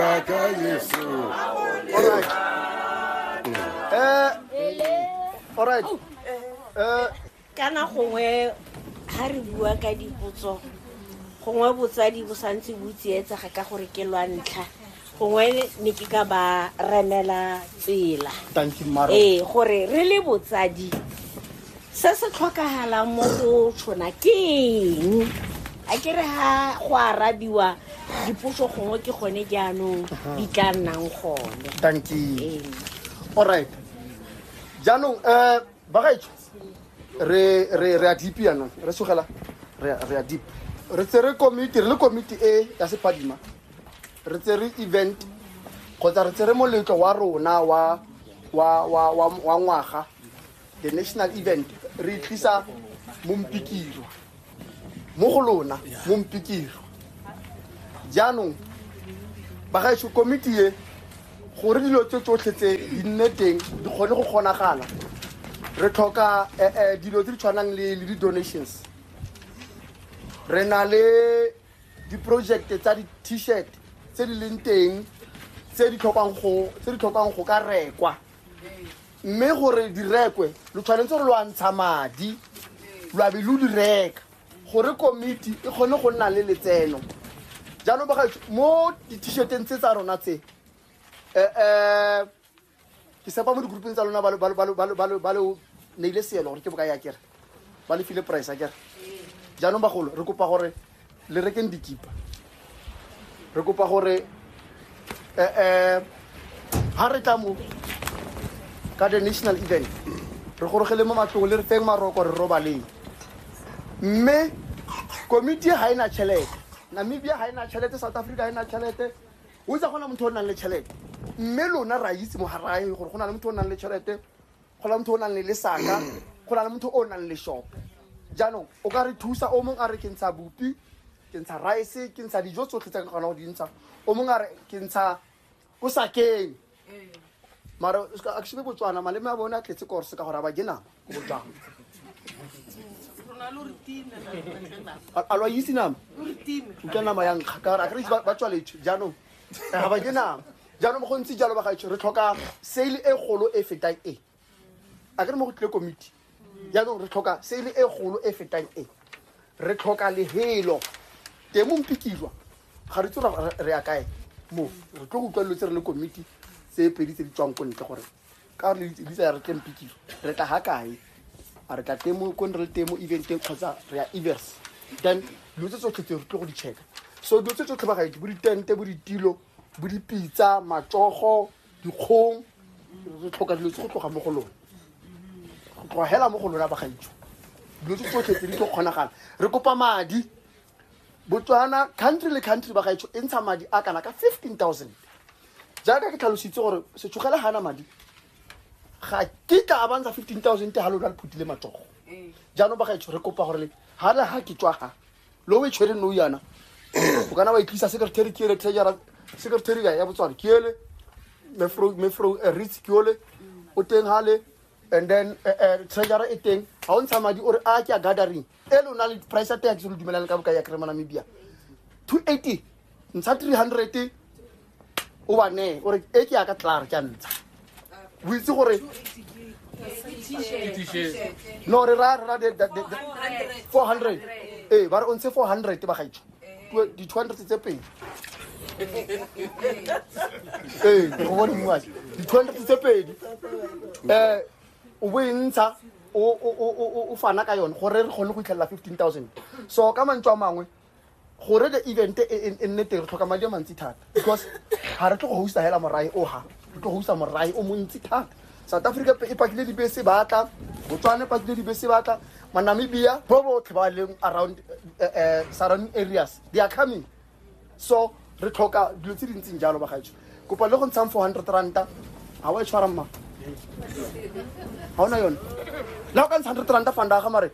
Kaka Yesu. All right. Eh, all right. Eh, kana gongwe ga re bua ka dipotso gongwe botsadi bo santse bo tsietsega ka gore ke lwa ntlha gongwe ne ke ka ba remela tsela thank you maro ee gore re le botsadi se se tlhokagalang mo go tshwana ke eng a ke re ga go arabiwa dipotso gongwe ke gone jaanong di tla nnang gone danki allright jaanong um bagaetsho re a deep yanong re sogela re a deep re tse re komiti re le komiti e ya sepadima re tse re event kgotsa re tse re moletlo wa rona wa ngwaga the national event re tlisa mompikirwa mo go lona mompikirwa jaanong bagaetsho komiti e gore dilo tse tsotlhe tse di nne teng di kgone go kgonagala re tlhoka eh, eh, dilo tse di tshwanang le le di-donations re na le di-project tsa di-t-shirt tse di leng teng tse di tlhokang go ka rekwa mme gore di rekwe lo tshwanetse gore lo a ntsha madi lo abe lo di reka gore komiti e kgone go nna le letseno jaanong bagaetso mo di-t-shirteng tse tsa rona tse um ke sepa mo di-groupeng tsa lona ba le neile seelo gore ke boka ya kere ba le file price a kere jaanong bagolo re kopa gore le rekeng dikipa re kopa gore um eh, ha eh, re tla mo ka the national event re gorogele mo matlong le re feng maroko re robaleng mme komiti ga e na tšhelete namibia ga e na tšhelete south africa ga e na tšhelete o itsa gona motho o nang le tšhelete mme lona ra itse mo garaeng gore go na le motho o nang le tšhelete go na le motho o nang le lesaka go na le motho o nang le shopo jaanong o ka re thusa o mongwe a re ke ntsha bopi ke ntsha rice ke ntsha dijo tsotlhe tsa ke kgona go di ntsha o mongwe a re ke ntsha ko sakeng mara o se ka- a ke shebe botswana maleme a bone a tletse kore se ka gore a ba ke nama ko botswana A- a lo itse nama utlwa nama ya nkga ka gore a kere ba tswaletswe jaanong ga ba ke nama jaanong go ntse jalo bagaetsho re tlhoka sale e golo e fetang e a ke re mo go tlile komiti jaanong re tlhoka sale e golo e fetang e re tlhoka lehelo teng mo mpikilwa ga re itse re ya kae mo re tlo go utlwa dilo tse re le komiti tse pedi tse di tswang ko ntle gore ka gore di tsaya re tle mpikilo re tla ga kae a re tla temo ko ne re le temo eventeng kgotsa re ya evers then dilo tse tsotlhe tse re tlo go di checka so dilo tse tsotlhe ba gaedi bo ditente bo ditilo bo dipitsa matsogo dikgong re tlhoka dilo tse go tloga mo go lone go tloga hela mo go lona bagaitsho dilo tse tsotlhe tse di tlo kgonagala re kopa madi botswana country le country bagaitsho e ntsha madi a kana ka 15000 jaaka ke tlhalositse gore setshogele ga na madi ga ke ka a bantsha 15000 te ga lona le phutile matsogo jaanong bagaitsho re kopa gore ga le ga ke tswa ga lo e tshwereng nou yana o kana wa e tlisa secretary ke ele treasurer secretary ya botswana ke ele mefro mefro eh, ritz ke ole o teng hale and then eh, eh, treasurer e teng ha o ntsha madi o re a ke a gathering e lona le price ya tax lo dumelang ka boka ya kry mo namibia 280 ntsha 300 o ba nee o re e ke yaka tlar ke a ntsha o itse gore no re ra ra four hundred ee ba re o ntshe four hundred ba gaitsho di-two hundred tse pedi ee go bone mmuaa di-two hundred tse pedi um o bo e ntsha o fana ka yone gore re kgone go itlhelela fifteen thousand so ka mantswe a mangwe gore the event e, e, e nne teng re tlhoka madi a mantsi thata because ga re tlo go hosta hela morae o ga re tlo go hosta morae o montsi thata south africa e pakile dibese batla botswana e pakile dibese batla manamibia bo botlhe ba leng around uh, uh, surrounding areas they are coming so re tlhoka dilo tse dintseng jalo bagaetsho kopa le go ntshang four hundred ranta ga wa e tshwara mma ga ona yone la o ka ntsha hundred ranta fanda ga mare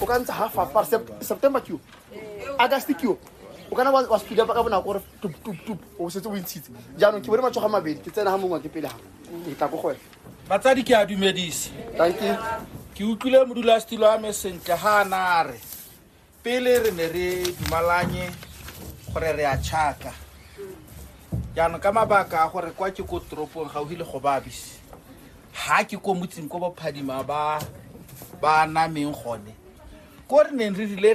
o ka ntsha half half september keo august keo o kana wa speeda ka bonako gore tuptup o setse o intshitse jaanong ke bone matsoga mabedi ke tsena ga mongwe ke pele ga ke tla ko go wena batsadi ke a dumedise danke ke utlwile modulasetilo wa me sentle ga a nare pele re ne re dumalanye gore re a tšhaka jaanong ka mabaka a gore kwa ke ko toropong gauhi le go babise ha ke ko motseng ko bophadima ba ba nameng gone ko re neng re rile